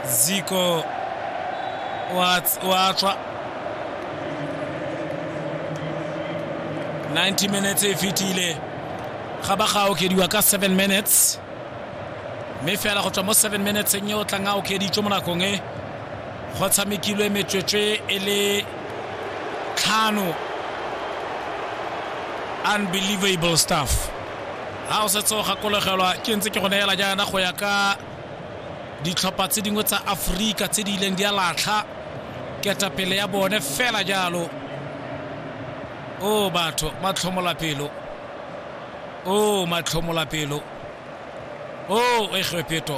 ziko wa wa tswa 90 minutes e fetile ga ba ga okediwa ka 7 minutes mme fela go tswa mo 7 minutes eng e o tlang a okeditswe mo nakong e go tshamekilwe metswetswe e le tlhano unbelievable stuff ga o setse o gakologelwa ke ntse ke go neela jaana go ya ka ditlhopha tse dingwe tsa aforika tse di ileng di a latlha ketapele ya bone fela jalo o batho matlhomola pelo o matlhomola pelo o egwepeto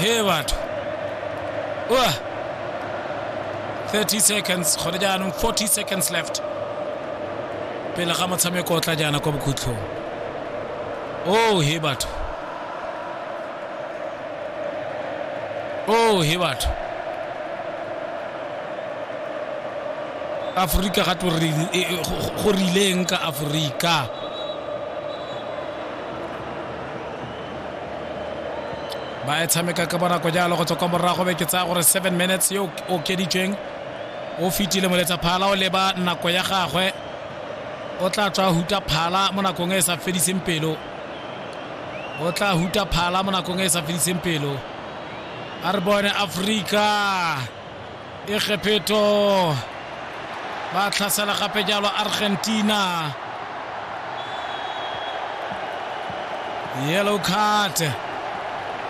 he batho Uah. 30 seconds gone jaanong 40 seconds left pele ga motshameko o tla jaana kwa bokhutlhong oh he batho oh he batho aforika ga tlo re- e- e- go- go rileng ka aforika ba e tshameka ka bonako jalo go tswa kwa morago be ke tsaya gore seven minutes yo o keditsweng o fetile moletsa phala o leba nako ya gagwe o tla tswa huta phala mo nakong e e sa fediseng pelo o tla huta phala mo nakong e e sa fediseng pelo a re bone aforika egepheto ba tlhasela gape jalo argentina yellow card